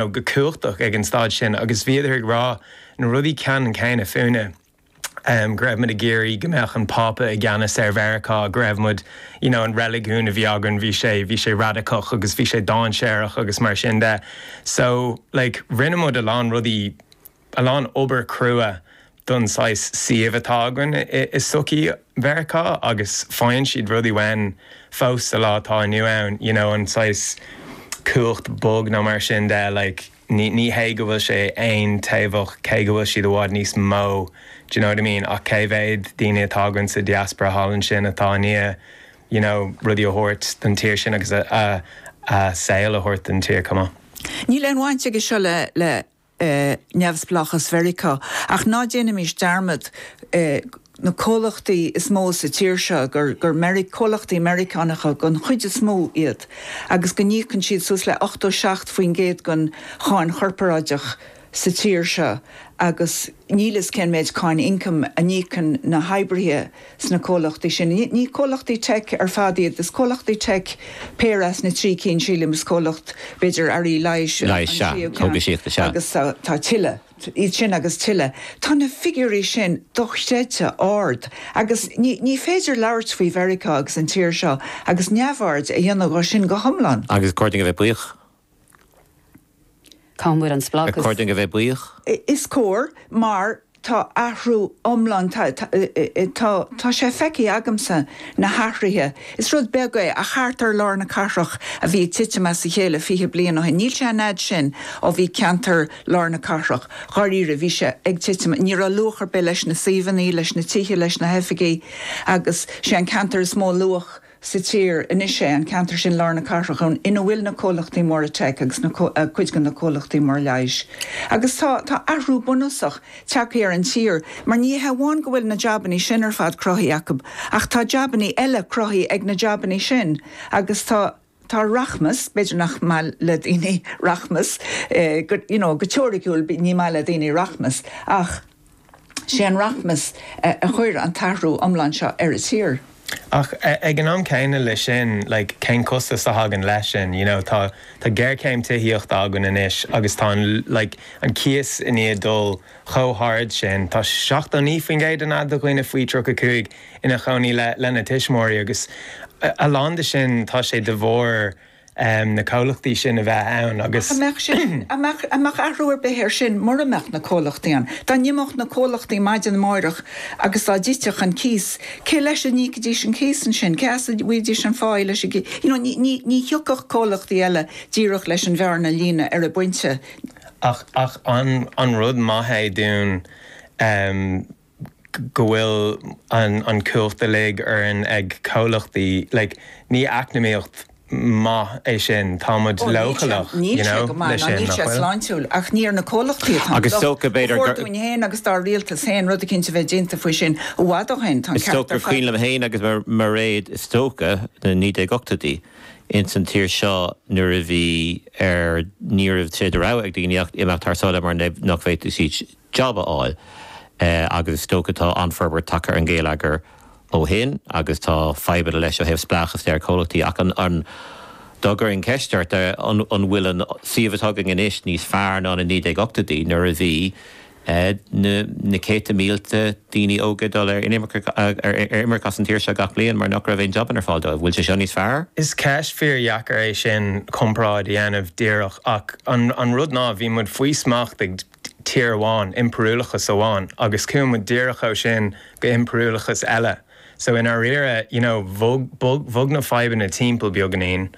nó go cumhachtach ag an staid sin agus bhíodar ag rá na rudaí ceannann céanna fúinne, go raibh muid ag iarraidh go mbeadh an Pápa i gceannas ar Mheiriceá, go raibh muid, you know, an reiligiún a bhí againn, bhí sé, bhí sé radacach agus bhí sé dáinséarach agus mar sin de. So, like, rinne muid a lán rudaí a lán obair crua don saghas suíomh atá againn i sochaí Mheiriceá agus faigheann siad rudaí uainn fós sa lá atá inniu ann, you know an saghas cumhacht bog nó mar sin de like ní hé go bhfuil sé aontaobhach cé go bhfuil siad i bhfad níos mó do you know what I mean ach cé mhéad daoine atá againn sa diaspora thall ansin atá i ndiaidh you know rudaí a thabhairt don tír sin agus a saol a thabhairt don tír come on. Níl aon bhaint aige seo le, le, le. neamhspleáchas Mheiriceá. Ach ná déanaimis dearmad, na comhlachtaí is mó sa tír seo, gur comhlachtaí Meiriceánacha den chuid is mó iad agus go n-íocann siad suas le 87 faoin gcéad den cháin chorparáideach sa tír seo agus níl a fhios cén méid cáin ioncaim a n-íocann na hoibrithe Sna comhlachtaí sin, ní comhlachtaí teic ar fad iad, is comhlachtaí teic péire as na trí cinn, sílim, is comhlacht, b'fhéidir, earraí leighis an tríú ceann, agus tá tuilleadh, iad sin agus tuilleadh. Tá na figiúirí sin dochreidte ard, agus ní féidir labhairt faoi Mheiriceá agus an tír seo agus neamhaird a dhéanamh dhó sin go hiomlán. Agus is cóir dúinn a bheith buíoch. Cá bhfuil an spleáchas? Cóir dúinn a bheith buíoch. Is cóir, mar tá athrú iomlán, tá, tá, tá sé feicthe agamsa, na hathruithe. Is rud beag é, ach thart ar lár na cathrach a bhí ag titim as a chéile fiche bliain ó shin. Níl sé an fhad sin ó bhí ceantar lár na cathrach, dháiríre, bhí sé ag titim, ní raibh luach ar bith leis na suíomhanna, leis na tithe, leis na hoifigí, agus sé an ceantar is mó luach, sa tír. Anois sé an ceantar sin lár na cathrach ina bhfuil na comhlachtaí móra teic agus cuid de na comhlachtaí móra leighis. Agus tá tá athrú bunúsach tagtha ar an tír, mar ní hé amháin go bhfuil na jabannaí sin ar fad cruthaithe acu, ach tá jabannaí eile cruthaithe ag na jabannaí sin, agus tá tá rachmas, b'fhéidir nach maith le daoine rachmas, you know go teoiriciúil ní maith le daoine rachmas, ach. Sé an rachmas a chuir an t-athrú iomlán seo ar an tír. Ach ag an am céanna leis sin, like, cén costas a thagann leis sin, you know? Tá géarchéim tithíochta againn anois agus tá an, like, an cíos i ndiaidh dul chomh hard sin, tá 79% an fhad de dhaoine faoi 35 ina chónaí le, lena tuismitheoirí agus a lán de sin, tá sé de bharr. na comhlachtaí sin a bheith ann agus. Ach a mbeadh sin, a mbeadh athrú ar bith air sin mura mbeadh na comhlachtaí ann? Dá n-imeodh na comhlachtaí maidin amáireach agus dá dtitfeadh an cíos, cé leis a n-íocfaidís an cíos ansin? Cé as a bhfaighidís an cháin leis an gcíos? You know, ní, ní, ní thiocfadh comhlachtaí eile díreach leis an bhearna a líonadh ar an bpointe. Ach, ach an, an rud maith é dúinn, go bhfuil an chumhacht uilig orainn ag comhlachtaí, like ní eacnamaíocht maith é sin, tá muid Oh, níl sé, leochaileach, you níl sé know, go maith, le ná sin, níl nach sé bhfuil? sláintiúil, ach ní ar na comhlachtaí atá an Agus locht. dócha, Ba b'fhéidir, chóir gur. dúinn féin agus dár rialtas féin rud éicint a bheith déanta faoi sin i bhfad ó shoin, tá an Is ceart dócha ar gur cuimhin fad. liom féin agus Mairéad, is dócha, na 1980idí ins an tír seo nuair a bhí ar, ní raibh sé de rogha ag daoine ach imeacht thar sáile mar nach bhféadfadh siad jab a fháil. Agus is dócha tá an-fhorbairt tagtha ar an ghéilleagar ó shin agus tá fadhbanna leis ó thaobh spleáchas de ar chomhlachtaí. Ach dá gcuirfinn ceist ort, an bhfuil an suíomh atá againn anois níos fearr ná na 1980idí nuair a bhí na céadta mílte daoine óga ag dul ar imirce as an tír seo gach bliain mar nach raibh aon jabanna ar fáil dóibh? An bhfuil sé seo níos fearr? Is ceist fíordheacair é sin, comparáid a dhéanamh díreach. Ach an rud ná, bhí muid faoi smacht ag. tír amháin, impiriúlachas amháin, agus chuaigh muid díreach ó sin go impiriúlachas eile. So i ndáiríre, you know, bhog, bhog na fadhbanna timpeall beagainín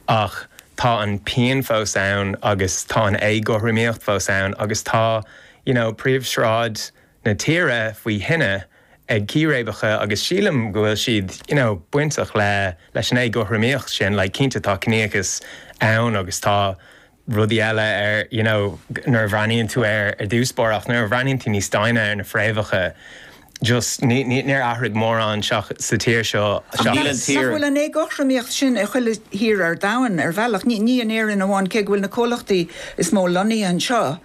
ach tá an pian fós ann agus tá an éagothromaíocht fós ann agus tá, you know, príomhshráid na tíre faoi thine ag círéibeacha agus sílim go bhfuil siad, you know, bainteach le, leis an éagothromaíocht sin, like, cinnte tá ciníochas ann agus tá, rudaí eile ar you know nuair a bhreathnaíonn tú air ar dtús báire ach nuair a bhreathnaíonn tú níos doimhne ar na fréamhacha just níor athraigh mórán sa tír seo seachas. Nach bhfuil an éagothromaíocht sin i chuile thír ar domhan ar bhealach, ní in Éirinn amháin cé go bhfuil na comhlachtaí is mó lonnaithe anseo,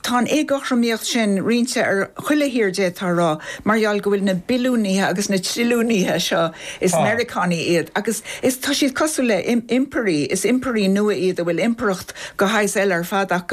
Tá an éagothromaíocht sin roinnte ar chuile thír d'fhéadfá a rá, mar gheall go bhfuil na billiúnaithe agus na trilliúnaithe seo, is Meiriceánaigh iad, agus is, tá siad cosúil le, impirí, is impirí nua iad a bhfuil impireacht de shaghas eile ar fad acu.